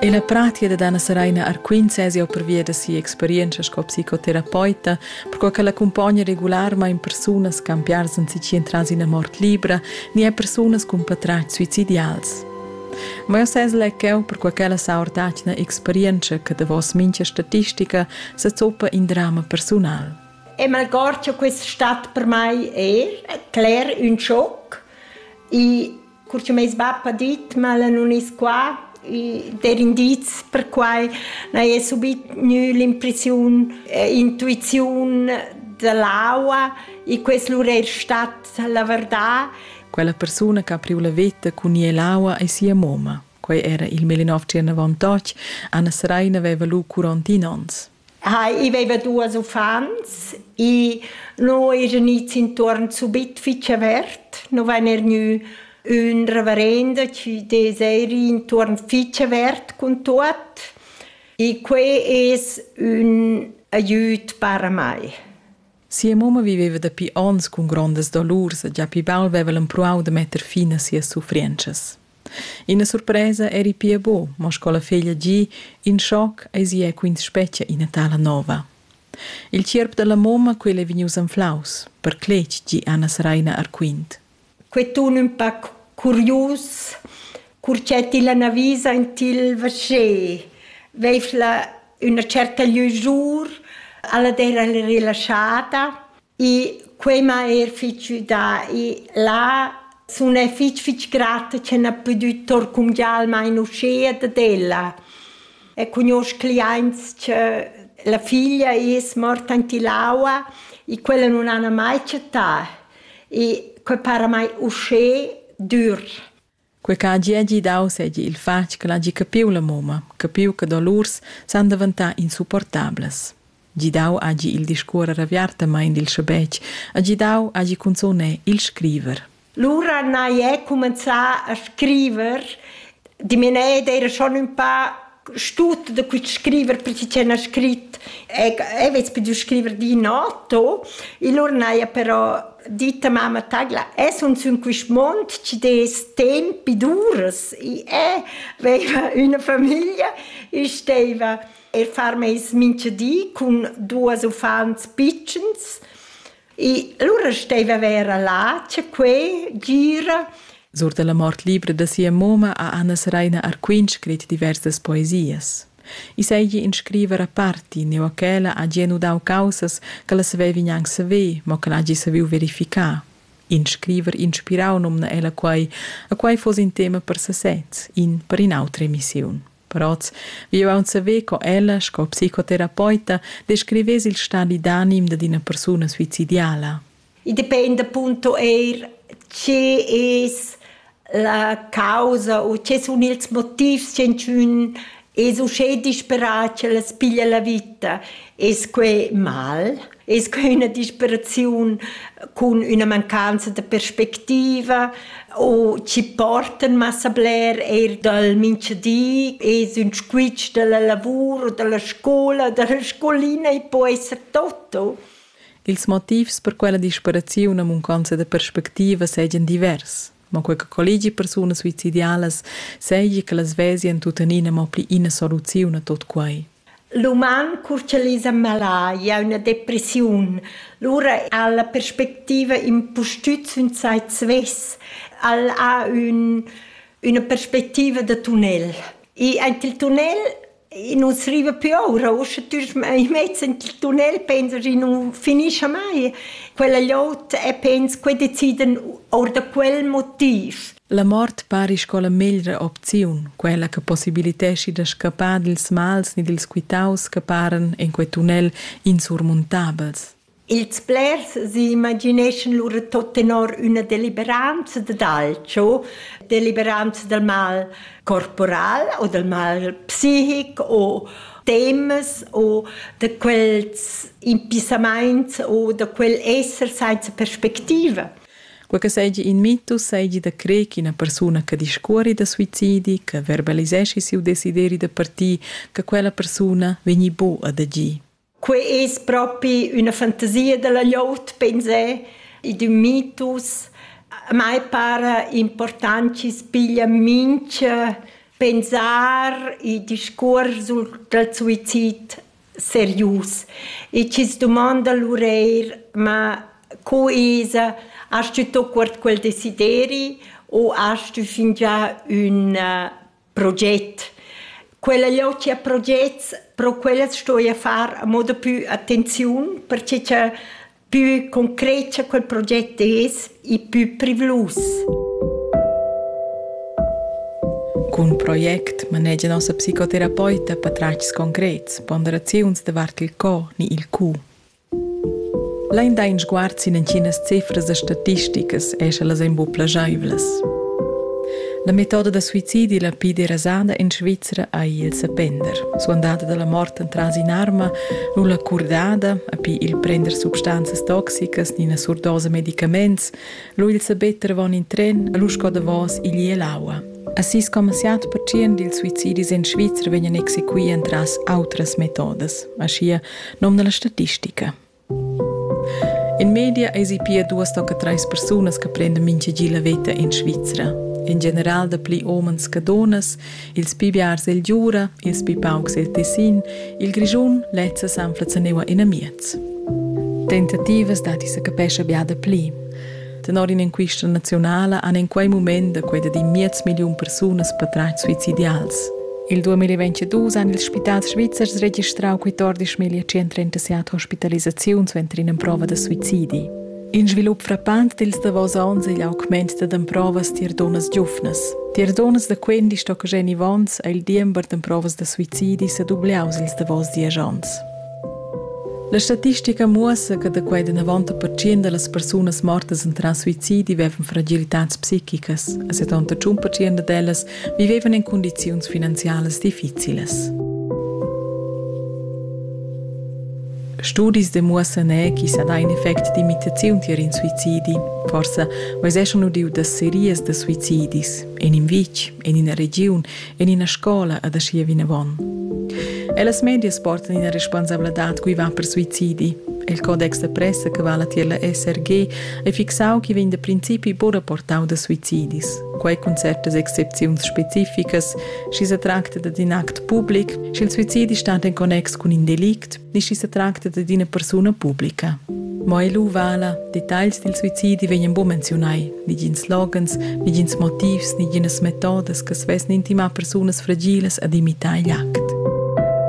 E la pratia da Dana Seraina Arquint sez jau pervia da sia experientscha sco psicoterapeuta, perquai ch'ella accumpogna regularmain persunas ch'han piars anzi entras ina mort libra ni er persunas cun patratgs suicidials. Ma jau sez lec jau perquai ch'ella sa ortatgna experientscha che davos mincha statistica sa zoppa in drama persunal. E malgord che questa stat per mai è cler un schoc, i Cur che meis bap ha dit ma ella nun es qua, i der indiz per quai, n'haja subit gnü l'impressiun e intuiziun da l'aua e quest lur eir stat la verdà. Quella persuna che ha priu la veta cun gnir l'aua ei sia moma. Quei era il 1929. Anna Seraina veva lu 41 onns. Hai, i veva duas uffants e no esa gnits intuorn subit fich avert. No vain er gnü ün reverenda chi dess eir ir intuorn fich avert cun tuot e que es ün aiüt para mai. Sia mamma viveva dapi onns cun grondas dolurs e gia pli baul veva el empruau da metter fin a sias suffrientschas. Ina surpresa eri pia buc, mo sco la feglia gi, in schoc eisi è quins spetga ina tala nova. Il tgierp dalla mamma, quel ei vegnius anflaus, per cletg, gi Anna Saraina Arquint. Quei tun ün pac curius, cur che ti la navisa in til vascher, veifla üna certa lüzur, ella d'eira relaschada e quei m'ha eir fich güdà e là sun e fich fich grata che n'ha pudü torcumgiar almain uschea dad ella. E cugnuosch cliaints che la figlia es morta in Tilaua e quella nun hana mai chattà. e que para mai uschè dür. Quei che hagi hagi dau seigi il fatg che hagi capiu la mumma, capiu che dolurs san daventar insupportablas. Gidau hagi il discuorer aviartamein dil schabetg, ha gidau hagi cunzun è il scriver. Lura n'hai è cumenzà a scriver, di mir nee, era schon un paar stut da quit scriver prezi c'è na scrit e e vez più scriver di nato il ornaia però ditta mamma tagla es un sun quist mond ci des tempi dures i è veva una famiglia e steva e far meis mincha di cun duos uffants pitschens E allura steva vera là, c'è quei, gira. Sur dalla mort libra da sia moma ha Anna Seraina Arquin scrit diversas poesias. I seigi in scriver aparti, neu ch'ella ha gia nudau caussas che la savevi gnanc saver, mo che l'hagi saviu verificar. In scriver inspirau numna ella quei, a quei fuss in tema per sesez, in per in'autra emissiun. Proz. Vi aunc saver co ella, sco psicoterapeuta, descrivess il stadi d'anim dad ina persuna suicidiala. I dependa appunto eir che es la causa o che sun ils motivs che ün es uschè disperà ch'el as piglia la vita. Es que mal? Es que üna disperaziun cun üna mancanza da perspectiva o chi portan massa bler eir dal mincha di? Es ün squitsch da la lavur, da la scoula, da la scolina e po esser tutto? Ils motivs per quella disperaziun a munconza da perspectiva seigien divers. mo quei che collegi persunas suicidialas seigi che las vesien tuttenina mo pli ina soluziun a tot quei. L'uman curcialisa malaia, üna depressiun. Lura ha la perspectiva impustüt sün sai svess. El ha ün, üna perspectiva da tunnel. E aint il tunnel E nus riva pü oura, uschè tüsch i mezz in il tunnel pensa chi nu finischa mai. Quella glot e pens che decidan our da quel motiv. La mort pari sco la meglra opziun, quella che possibiliteschi da scappar dils mals ni dils quitaus che paran en quei tunnel insurmuntabels. Ils blers s'imagineschan lura tot tenor üna deliberanza dad alcho, deliberanza dal mal corporal o dal mal psichic o temas o da quels impissamaints o da quel esser sainza perspectiva. Quei che seigi in mitus seigi da crer ch'ina persuna che discuori da suicidi, che verbaliseschi siu desideri da partir, che quella persuna vegni bu ad agir. Quei es propi üna fantasia da la gliout, pensé. I d'ün mitus. A mai para important chi's piglia mincha pensar e discuors dal suizid serius. E chi's dumonda l'ureir: ma co esa? Hast tü tuot quart quel desideri u hast tü fingià ün proget. Quella logia progets, pro quellas sto io far a moda più attenziun, perche cha più concreta quel proget es e più privlus. Cun project manegia nossa psicoterapeuta patratgs concrets, ponderaziuns davart il co ni il cu. Lain dà in sguard sin entginas cifras e statisticas e sche las èn buc plagiaivlas. La metoda da suicidi la pli derasada en Svizra ei il sepender. Suandada dalla mort entras in'arma, nulla curdada, api il prender substanzas toxicas ni ina surdosa medicaments, lu il sabetter avon in tren, lu sco davos igl e l'aua. A 6,7% dils suicidis en Svizra vegnan exequì entras autras metodas. Aschia nom da la statistica. In media eisi pia duas tocca treis persunas che prendan mintgagi la veta in Svizra. In general da pli omens che donas, ils pi biars el Giura, ils pi paucs el Tessin, il Grischun lezza sanflaza neua in amiez. Tentativas dati se capescha bia da pli. Tenor in'enquista naziunala han en quei mument da quei di miez milliun persunas patratg suicidials. Il 2022 han ils spitals svizzers registrau quei 11.137 hospitalisaziuns suenter ina prova da suicidi. In svilup frappant dils davos onns igl augment da emprovas tier dunnas giuvnas. Tier dunnas da 15 tocca Jenny Vons ha il diember d'emprovas da suicidi sedubliaus ils davos diesch onns. La statistica muossa che da quei danavon da pertschien dallas persunas mortas entras suicidi vevan fragilitads psichicas e 71 pertschien dad ellas vivevan in cundiziuns finanzialas difficilas. Studis demuossan er chi sa dà in effect d'imitaziun tier in suicidi. Forsa veseschon udiu da serias da suicidis, in in vitg, in ina regiun, en ina scola ad aschia vinavon. Ellas medias portan ina responsabladad cui va per suicidi. Il codex da pressa che vala tier la SRG è fixau che vegn da principi buca portau da suicidis. Quei cun certas excepziuns specificas, schi se tracta da in act public, sch'il suicidi stat en connex cun in delict, ni sch'i sa tracta dad ina persuna publica. Mo ei lu vala, detagls dil suicidi vegnan buca menziunai, negins loghens, negins motivs, neginas metodas che svesn intimar persunas fragilas ad imitar igl act.